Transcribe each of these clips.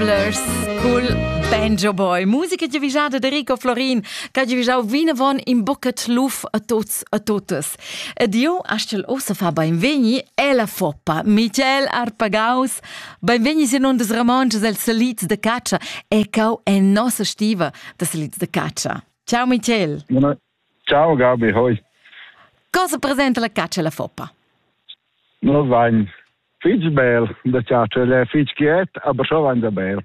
Blurs cul Banjo Boy. Musica giavijada de Rico Florin, che giavijau vinavon in bucet luf a tuts a tutas. Ed io astgel ossa fa beinvegni e la foppa. Michael Arpagaus, beinvegni sin un des ramonches el salits de caccia, ecau en nossa stiva de salits de caccia. Ciao Michael. Buona Ciao Gabi, hoi. Cosa presenta la caccia e la foppa? No vain fich bel da ciacer, el è fich chiet, aber schon vain da bel.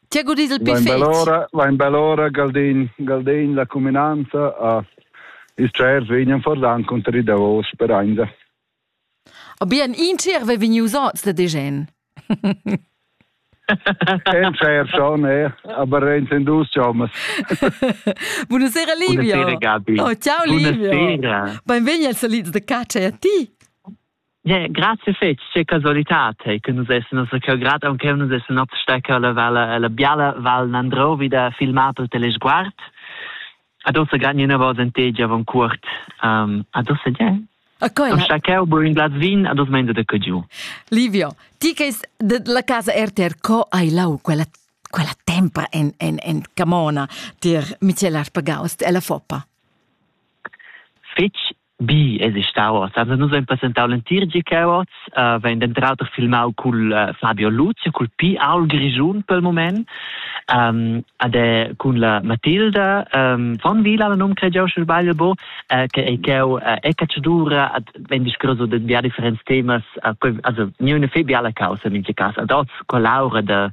Ti ha godit il piffet? Vain bell'ora, vain bell'ora Galdin, Galdin la cuminanza a ah, is tschairs vegnan fordan conter i davos per ainda. Bien, in tier ve vegnius oz da Degen. En fair schon, eh. aber in dus jomas. Buonasera Livio. Buonasera Gabi. Oh, ciao Livio. Buonasera. Benvegni al Saliz de Caccia e a ti. Yeah, grazie fetch, che casualità te che nus essen also che grad anche nus essen abstecker la val la biala val Nandrovi da filmar per telesguard. Adossa gagni na vos en tegia von cuort. Um, adossa ja. A coi. Con schacau bur in glas vin, ados menda da giu. Livio, ti che la casa RTR co hai lau quella quella tempra en en en Camona tier Michel Arpagaus e la Foppa. Fitch Bi es stau oz. Also nus hain presentau l'entir GK oz, uh, vain denter auter filmau cul uh, Fabio Luzia, cul Pi Aul Grischun pel moment, um, ad è cun la Matilda um, von Vila, la nom cregiau sche sbagl bo, uh, che è cheu uh, è cacciadura, ad vegn discurso de via differents temas, uh, also niune fe biala causa in GK, ad oz collaura de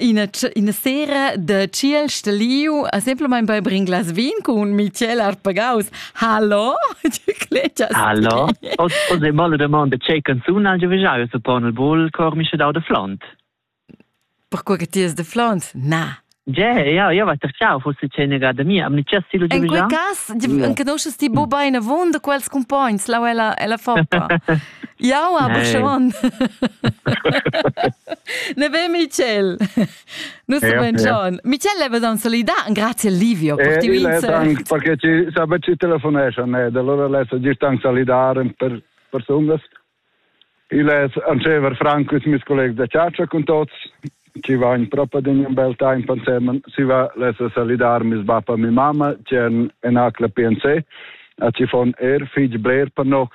ina, ina sera de ciel steliu, a semplamain bei bring glas vin cun Michel Arpagaus. Hallo? Hallo? O se male domande c'è canzuna già visaio suppon il bol cor mi da de flont. Perquoi che ti es de flont? Na. Ja, ja, ja wat er ciao fosse cenega da mia, am ni just silo In quel cas, conosces ti bo hm. bene von de quels compagns, la ella ella foca. Jau a Buchon. ne be Michel. Nus ja, ben John. Michel leva dan solidar. Grazie Livio per eh, ti vince. Perché ci sabe ci telefonesce ne, da allora lessa di stan solidar per personas. Il es ancever Franco is mis colleg da Ciaccia con tots. Ci va in propria din un bel time pansemen. Si va lessa solidar mis bappa mi mamma, c'è en acla PNC. A ci fon er fig bler per nox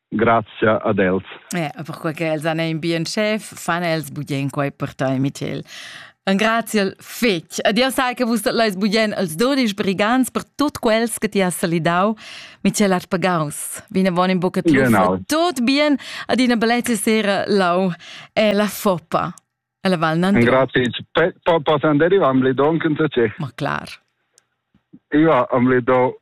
Grazia ad els. Eh, perquai che els han in bien chef, fan els bugen quai per tai, Michel. Un graziel fetg. Adieu sai che vus leis bugen als dudisch brigants per tut quels che ti has salidau. Michel Arpagaus, vine von in bucca trufa. Genau. Tot bien ad una bellezza sera lau e la foppa. Alla Val Nandro. Grazie. Posso andare? Io am le do anche un tacere. Ma clar. Io am le do